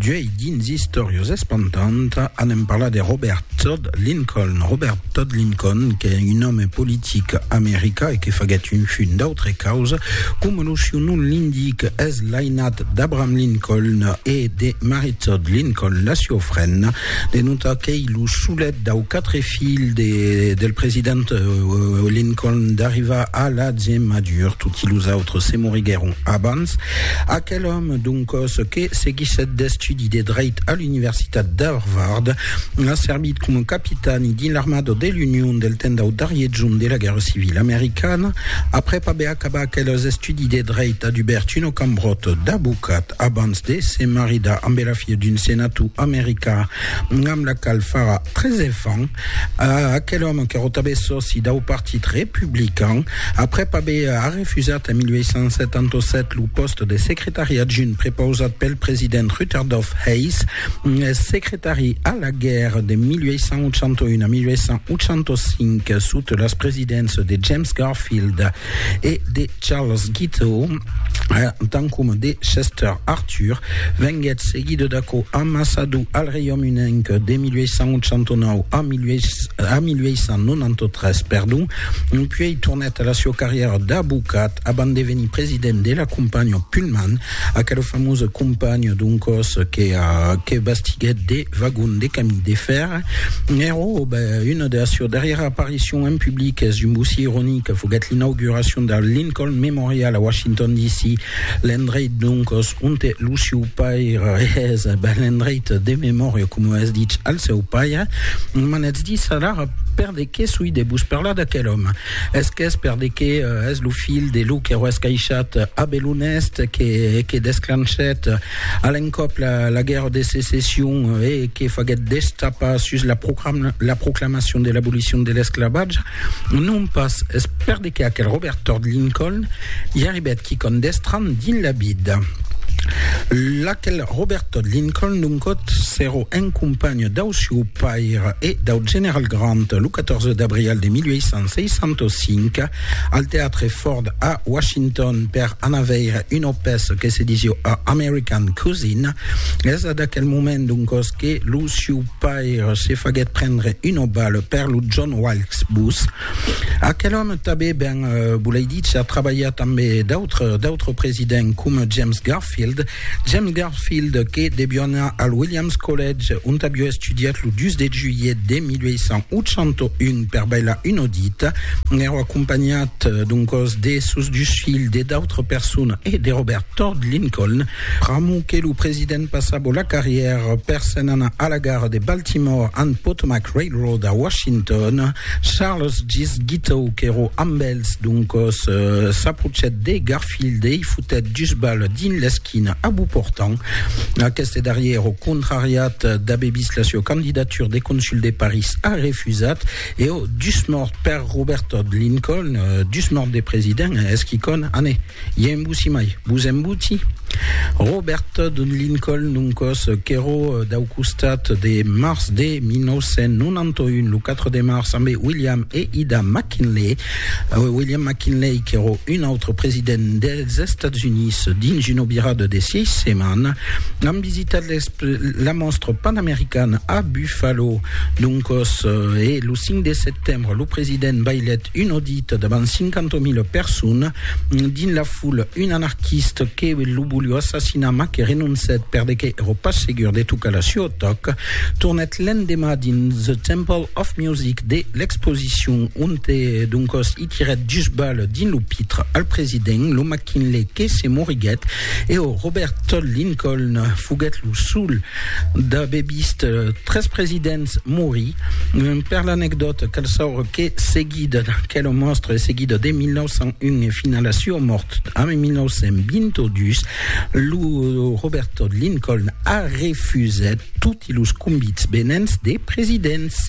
D'uei dins Istorios Espantant anem parlar de Robert Todd Lincoln. Robert Todd Lincoln qu'es un òme politic america e que faguèt un fun d'autre causa, coma lo siu nom l'indic, es l'ainat d'Abraham Lincoln e de Mary Todd Lincoln, la siua frenda, de notar qu'ei lo solet dau quatre filhs de, del president Lincoln d'arrivar a la gemadura, toti los autres se moriguèron abans. Gonçalves. Aquel òme, d'un còs que seguissèt d'estudi de dreit a l'Universitat d'Harvard, a servit coma capitani dins l'armada de l'Union del temps dau darrier jorn de la Guèrra Civila Americana. Aprèp aver acabat aqueles estudis de dreit, a dubèrt una cambròta d'abocat abans de se maridar ambe la filha d'un senator american amb la qual farà tres enfants. A aquel òme que rotave sòci dau Partit Republican, aprèp aver arrefusat en 1877 lo pòste de secretari adjunt prepausat pel president Rutherdoff Hayes, eth secretari a la guèrra de 1881 a 1885 sota las presidéncias de James Garfield, e de Charles Guiteau, tant coma de Chester Arthur, venguèt seguida d'aquò amassador al Reiaume Unenc de 1889 a 1893, perdon, puèi tornèt a la sieu carrièra d'avocat abant de venir president de la companhiá Pullman, Aquel famós companh d'un còs que bastiguèt de vagons de camin de fèr, Nero, una de las sieus darrièras aparicions en public es un bocí ironic, foguèt l'inauguracion del Lincoln Memorial a Washington DC, l'endreit doncas onte lo sieu paire es, l'endreit de memòria coma es dich al seu paire. M'anètz dins alara per de qué soi de vos parlar d'aquel òme. Es qu'es per de que es lo filh de lo que roes caishat Abel Honest que que desclanchèt a l'encòp la, la guèrra de secession e que faguèt destapar sus la, proclam, la proclamacion de l'abolicion de l'esclavatge, non pas es per de que aquel Robert Todd Lincoln i arribèt quicòm d'estranh dins la vida. L'aquel Robert Todd Lincoln, doncòt, s'èro un companh dau sieu paire e dau general Grant, lo 14 d'abrial de 1865 al teatre Ford a Washington per anar veire una pèça que se disiu A American Cuisine. Es a d'aquel moment d'un cos que lo siu paire se faguèt prendre una bala per lo John Wilkes Booth. Aquel òme tabé ben, eh, bolei dicha, trabalhat ambe d'autres d'autres presidents com James Garfield, James Garfield, que devió anar al Williams College, ont avió estudiat lo 2 de julhet de 1881 per bailar un audit, n'èra acompanhat doncòs de sos dus filhs, de d'autres personas e de Robert Todd Lincoln. Pr'amor que lo president passava la carrièra per se'n anar a la gara de Baltimore and Potomac Railroad a Washington, Charles Gist Guiteau, qu'èra amb els doncòs, s'aprochet de Garfield. Pildei fotèt dus bales dins l'esquina a Beauportan. Aqueste darrièr, au contrariat d'aver vist la sua candidatura de consul de París, a refusat e au dus mòrt per Robert Todd Lincoln, dus mòrt de president, es quicòm, anè, i a embussi mai, vos embuti? Robert Todd Lincoln, un còs qu'èro dau costat de març de 1991, lo 4 de març, ambe William e Ida McKinley, William McKinley, qu'èro un autre president dels Estats Units, dins una virada de sièis setmanas, an visitat la Mòstra Panamericana a Buffalo. Doncòs, e lo 5 de setembre, lo president bailèt un audit davant 50.000 personas. Dins la foula, un anarquist que lo volió assassinar mas que renoncèt perdeque èro pas segur de tocar la sua tòca, tornèt l'endemà dins The Temple of Music de l'expositor. repetition onte doncòs i tirèt dus balles dins lo pitre al president, lo McKinley que se moriguèt e o Robert Todd Lincoln foguèt lo sol d'aver vist tres presidents morir. Per l'anecdòta, cal saure que seguit d'aquela mòstra e seguida de 1901 e fins a la sua mòrt a 1922, lo Robert Todd Lincoln a refusèt toti los convits venents de presidents.